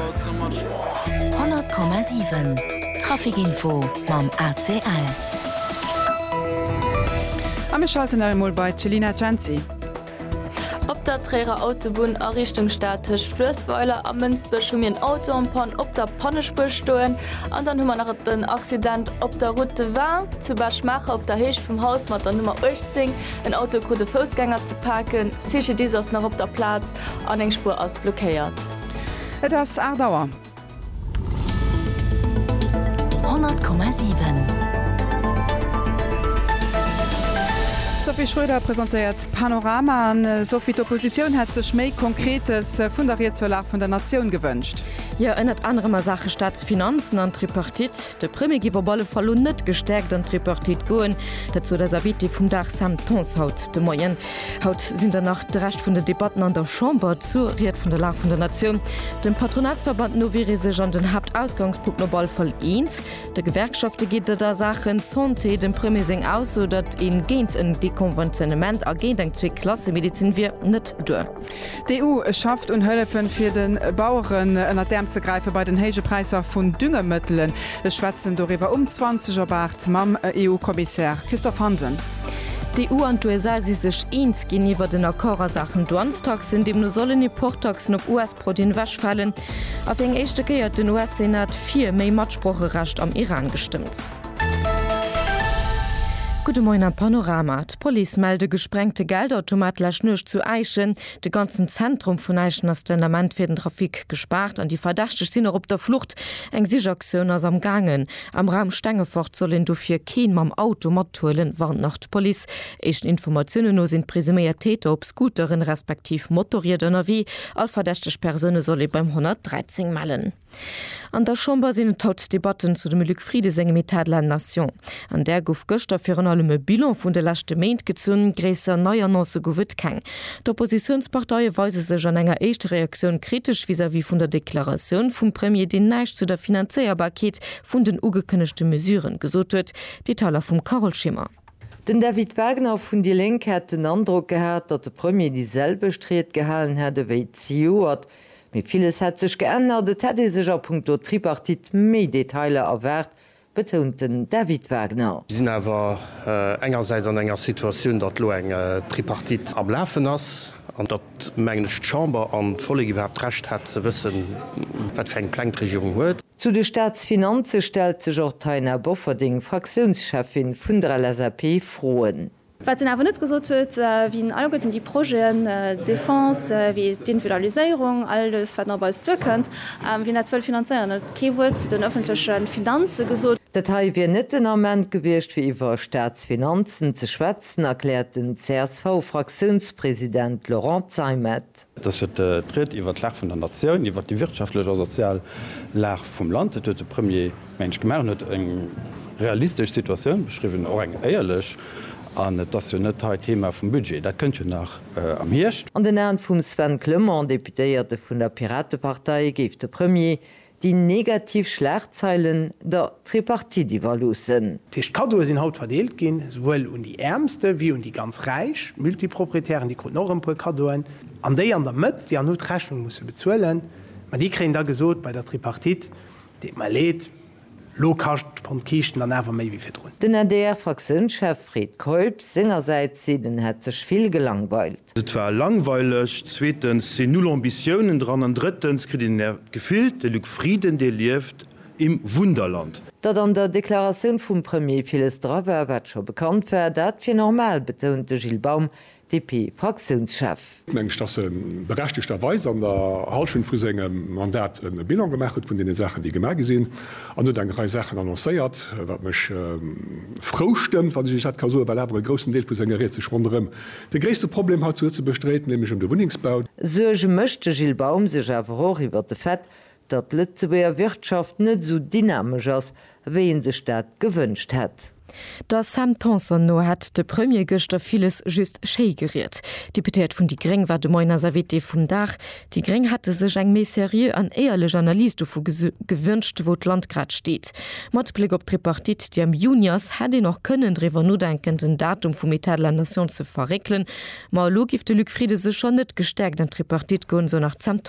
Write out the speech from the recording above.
100,7 Traficinfo mam ACL. A mir schalten nach emol bei d'Chelina Cenci. Op der Tréierer Autobunn a Richtung Stad tëscht Fluessweiler a Mënsbech hu mir en Auto en panne op der Pannespuer stoen. An dann hu mer nach den Accident op der Route de Vin zu Bech-Maacher op der Héicht vum Haus mat der Nummer 18. En Auto krut e Foussgänger ze paken. CGDIS ass nach op der Plaz an eng Spuer ass blockéiert. Et ass 8 Auer. 100,7. D'Sophie Schröder presentéiert d'Panorama. An Sophie, d'Oppositioun hätt sech méi Konkretes vun der Ried zur Lag vun der Natioun gewënscht. Jo, ënnert anerem a Saache Staatsfinanzen an Tripartite. De Premier géif op alle Fall lo net gestäerkt an d'Tripartite goen. Dat sot eis Invitée vum Dag Sam Tanson haut de Moien. Haut sinn der nach de Rescht vun den Debatten an der Chamber zur Ried vun der Lag vun der Natioun. Dem Patronatsverband no wier ee sech an den Haaptausgangspunkten op alle Fall eens. De Gewerkschafte geet et a Saachen Santé dem Premier seng Ausso, datt ee géint en Dekonventionnement a géint eng Zwee-Klasse-Medezin wier, net duer. D'EU schafft un Hëllefen, fir de Baueren ënnert d'Äerm ze gräifen, bei den héije Präisser vun Düngemëttelen. Ech schwätzen doriwwer um 20 op 8 mam EU-Kommissär Christophe Hansen. D'EU an d'USA si sech eens ginn iwwert en Accord a Saachen Douanestaxen. Deemno sollen Importtaxen op US-Produiten ewechfalen. A fir eng éischte Kéier huet den US-Senat fir méi Matsproocherecht am Iran gestëmmt. Gudde Moien am Panorama. D'Police mellt e gesprengte Geldautomat lescht Nuecht zu Äischen. De ganzen Zentrum vun Äischen ass den Ament fir den Trafic gespaart an déi Verdächteg sinn och op der Flucht. Eng Sichaktioun ass am gaangen. Am Raum Stengefort soll een dofir keen mam Auto mathuelen, warnt nach d'Police. Éischten Informatiounen no sinn d'presuméiert Täter op Scooteren, respektiv Motorrieder ënnerwee. All verdächteg Persoune soll ee beim 113 mellen. An der Chamber sinn et haut d'Debatten zu dem Luc Frieden sengem État de la nation. An där gouf gëschter virun allem e Bilan vun de leschte Méint gezunn, gréisser nei Annoncë gouf et keng. D'Oppositiounsparteie weise sech an enger éischter Reaktioun kritesch vis-à-vis vun der Deklaratioun vum Premier, deen näischt zu der Finanzéierbarkeet vun den ugekënnegte Mesuren gesot huet. Detailer vum Carole Schimmer. Den David Wagner vun déi Lénk hätt den Androck gehat, datt de Premier déi selwecht Ried gehalen hätt ewéi zejoert. Mee villes hätt sech geännert. Et hätt ee sech a punkto Tripartite méi Detailer erwaart, betount den David Wagner. Mir sinn awer engersäits an enger Situatioun, datt elo eng Tripartite am Lafen ass an datt, mengen ech, d'Chamber an d'Vollek iwwerhaapt d'Recht hätt ze wëssen, wat fir eng Pläng d'Regierung huet. Zu de Staatsfinanze stellt sech och d'Taina Bofferding, Fraktiounscheffin vun der LSAP, Froen. Wat en awer net gesot huet, wien alleguerten déi Projeten, Defense wéi d'Individualiséierung, alles wat nach op eis duerkënnt, wien dat wëll finanzéieren. En huet kee Wuert zu den ëffentleche Finanze gesot. Dat hei wier net den Ament gewiescht fir iwwer Staatsfinanzen ze schwätzen, erkläert den CSV-Fraktiounspresident Laurent Zeimet. Et ass jo d'Ried iwwert d'Lag vun der Natioun, iwwert déi wirtschaftlech a sozial Lag vum Land. Dat huet de Premier, meng ech, gemaach. En huet eng realistesch Situatioun beschriwwen, och eng éierlech. An et ass jo net hei d'Thema vum Budget, dat kënnt jo nach am Hierscht. An den Aen vum Sven Clement, Deputéierte vun der Piratepartei, géif de Premier déi negativ Schlagzeilen der Tripartite iwwerloossen. Dat heescht, d'Kaddoe sinn haut verdeelt ginn, souwuel un déi Äermste wéi un déi ganz Räich. D'Multiproprietären, déi kruten och erëm e puer Kaddoen. An déi an der Mëtt, déi han hu d'Rechnung musse bezuelen. Mä déi kréien da gesot bei der Tripartite, deet mer leed, elo kascht d'Pond Kiischten dann awer méi wéi virdrun. Den adr-Fraktiounschef Fred Keup sengersäits seet, en hätt sech vill gelangweilt. Et war langweileg, zweetens sinn null Ambitiounen dran an drëttens kritt een d'Gefill, de Luc Frieden, dee lieft im Wunderland. Datt an der Deklaratioun vum Premier villes dra war, wat scho bekannt war, dat wier normal, betount de Gilles Baum, DP-Fraktiounschef. Mengen ech, datt e berechtegterweis an der Hallschent vu sengem Mandat e Bilan gemaach huet vun deene Saachen, déi gemaach gi sinn, an huet eng Rei Saachen annoncéiert, wat mech frou stëmmt, wann ech dat ka soen, well awer e groussen Deel vu senger Ried sech ronderëm De gréisste Problem hei zu Lëtzebuerg dréit nämlech ëm de Wunnengsbau. Suerge mécht de Gilles Baum sech awer och iwwer de Fait, datt d'Lëtzebuerger Wirtschaft net esou dynamesch ass, wéi ee sech dat gewënscht hätt. Der Sam Tanson no hätt de Premier gëschter villes just schéi geriet. D'Deputéiert vun déi gréng war de Moien eis Invitée vum Dag. Déi Gréng hätte sech eng méi seriö an éierlech Analys dovu gewünscht, wou d'Land grad steet. Mat Bléck op d'Tripartite, déi am Juni ass, hätt een och kënnen driwwer nodenken, den Datum vum Etat de la Nation ze verréckelen. Ma elo géif de Luc Frieden sécher net gestäerkt an d'Tripartite goen, sou nach d'Sam Tanson.